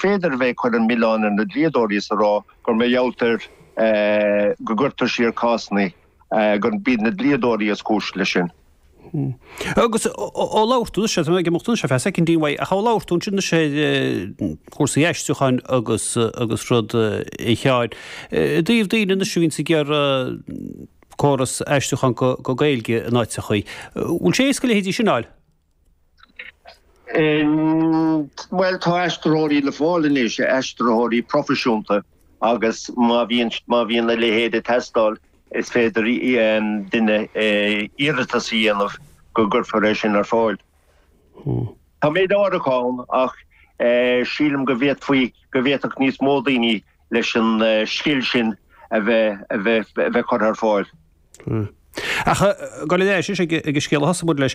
féidir a bheith ag cur an mhilleáin ar na dlíodóirí is a rá gur mar gheallt ar go gcuirtear siar cásanna gur b'iad na dlíodóirí is cúis le sin. Agus ó labhairt anois ag imeacht anois ar feadh soicind amháin, ach ó labhair tú ansin anois ar chúrsaí aistriúcháin agus agus rud a Sheáin, i dtaobh daoine anois a bhíonns ag iarraidh córas aistriúcháin go go Gaeilge in áiteachaí, bhfuil sé éasca a leithéide sin a fháil? Bhuel tá aistritheoirí le fáil anois, aistritheoirí proifisiúnta agus má bhíonn, má bhíonn a leithéid ag teastáil is féidir duine iarratas a dhéanamh go gcuirfear é sin ar fáil. Tá méid áirithe ann ach sílim go bhféadfaí, go bhféadfadh níos mó daoine leis an scil sin a bheith, a bheith, a bheith curtha ar fáil. Hm. Ach goil ar ais ag an scéal a thosaigh muid leis,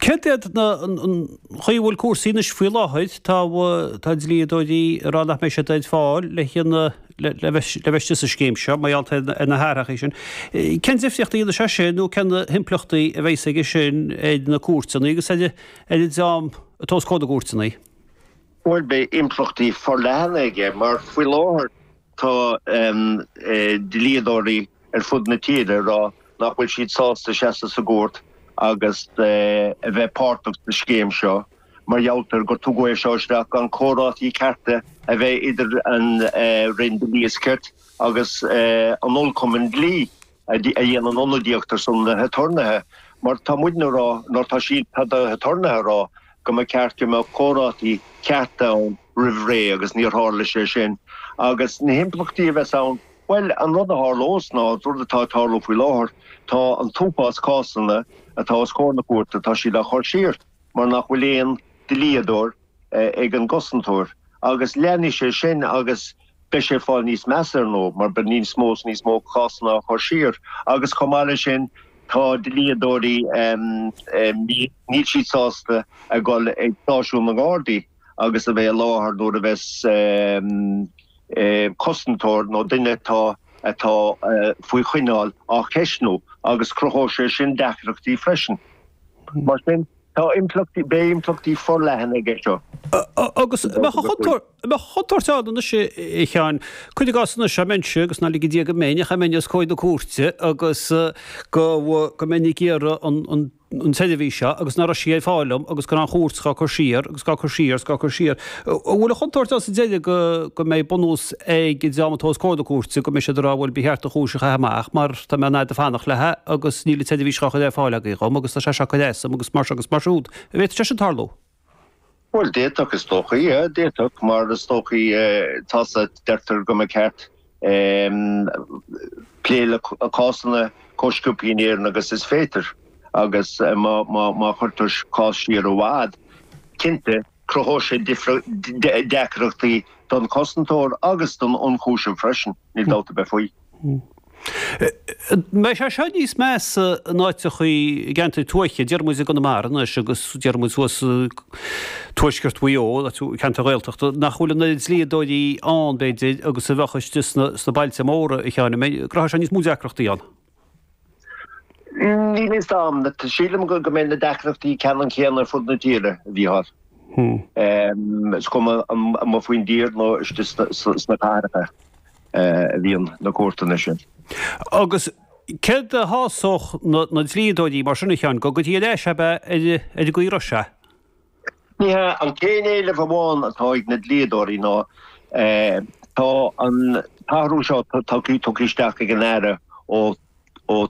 céard iad na, an chaoi a bhfuil cúrsaí anois faoi láthair, tá, tá dlíodóirí ag rá nach mbeidh siad ar fáil le haon, le bheith, le bheith istigh sa scéim seo, mar gheall ar, ar na hathraitheacha sin. Cén difríocht a dhéanfaidh sé sin nó cén himpleachtaí a bheas aige sin ar na cúirteanna agus ar, ar an dream atá os comhair na gcúirteanna? Bhuel beidh impleachtaí forleathana aige mar faoi láthair, Tá dlíodóirí ar fud na tíre ag rá nach bhfuil siad sásta seasamh sa gcúirt agus a bheith páirteach sa scéim seo mar gheall ar gur tugadh é seo isteach gan comhráití cearta a bheith idir an Roinn Dlí is Cirt agus an Chumann Dlí. a dhéanann ionadaíocht ar son na haturnaetha mar tá muid ina rá nuair tá siad tá na haturnaetha a rá go mba ceart go mbeadh comhráití cearta ann roimh ré agus níor tharla sé sin agus na himpleachtaí a bheas ann bhuel an rud a tharlós ná an rud atá ag tarlú faoi láthair tá an t-uafás cásanna atá os comhair na cúirte tá siad á chur siar mar nach bhfuil aon dlíodóir ag an gCosantóir agus leanfaidh sé sin agus beidh sé ag fáil níos measa ar ndóigh mar beidh níos mó is níos mó cásanna á chur siar agus chomh maith le sin tá dlíodóirí níl siad sásta a dhul ag stáisiún na nGardaí agus a bheith i láthair nuair a bheas Cosantóir nó duine atá atá faoi choinneáil á cheisniú agus cruthóidh sé sin deacrachtaí freisin. Mar sin. Tá impleachtaí, beidh impleachtaí forleathana aige seo. Agus an mbeadh an chontúirt, an mbeadh an chontúirt ann anois a Sheáin, cuir i gcás anois dá mbeinnse, agus ná lige Dia go mbeinn, ach dá mbeinn os comhair na cúirte agus go, go mbeinn ag iarraidh an, an, an tseirbhís seo agus nach raibh sí ar fáil dom agus go raibh an chúirt ghá cur siar agus ghá cur siar agus ghá cur siar. An bhfuil an chontúirt ann sa deireadh go mbeidh bunús ag an dream atá os comhair na cúirte go mbeidh siad ag rá bhuel ba cheart an chúis a chaitheamh amach mar tá mé i ndiaidh a bheith ag fanacht leatha agus níl an tseirbhís dhá cur ar fáil agaibh dhom agus tá sé seo ag cur as dom agus mar seo agus mar siúd. An bhféadfadh sé sin tarlú? Bhuel d'fhéadfadh is dócha. D'fhéadfadh mar is dócha tá sa deirtear go mba ceart plé le cásanna chomh sciobtha in Éirinn agus is féidir agus má chuirtear cás siar i bhfad cinnte Cruthóidh sé deacrachtaí don chosantóir agus don ionchúiseamh freisin, níl dabht ar bith faoi. Beidh sé seo níos measa in áiteachaí i gceantair tuaithe. Déarfaidh muid i gConamara anois agus déarfaidh muid thuas i dTuaisceart Mhaigh Eo, ceantair Ghaeltachta, nach bhfuil an oiread dlíodóirí ann, b'fhéidir, agus a bheadh istigh sna bailte móra, a Sheáin. An mbeidh, cruthóidh sé níos mó deacrachtaí ann? Níl fhios a'm. Sílim go mbeidh na deacrachtaí ceannann céanna ar fud na tíre, a Mhíchíl. Is cuma an mba faoin tír nó istigh sna cathracha a bhíonn na cúirteanna sin. Agus céard a shásódh na dlíodóirí mar sin a Sheáin, go gcuirfí ar ais ab ea ar an gcaoi a raibh sé? Ní hea, an t-aon éileamh amháin atá ag na dlíodóirí ná tá an t-athrú seo tugtha isteach ag an Aire ó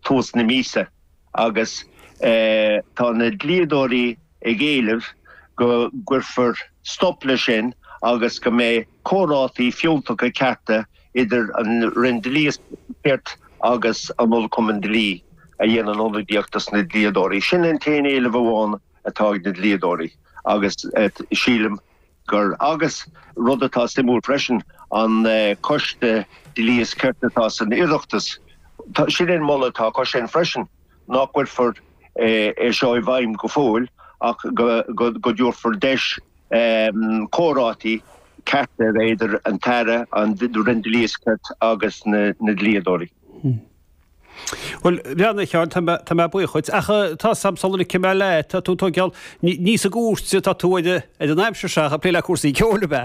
thús na míosa agus tá na dlíodóirí ag éileamh go gcuirfear stop leis sin agus go mbeidh comhráití fiúntacha cearta idir an Roinn Dlí is Cirt agus an Cumann Dlí a dhéanann ionadaíocht dos na dlíodóirí. Sin an t-aon éileamh amháin. atá ag na dlíodóirí agus sílim gur agus rud atá suimiúil freisin an Coiste Dlí is Cirt atá san Oireachtas sin é an moladh atá acu sin freisin nach gcuirfear é seo i bhfeidhm go fóill ach go dtabharfar deis comhráití cearta idir an tAire an Roinn Dlí is Cirt agus na dlíodóirí. Bhuel, a Sheáin, tá mé, tá mé buíoch dhuit. Ach tá fhios a'm sula scaoilfidh mé leat, tá tú, tá geall, ní sa gcúirt atá tú ar, ar an aimsir seo ach ag plé le cúrsaí ceoil, ab ea?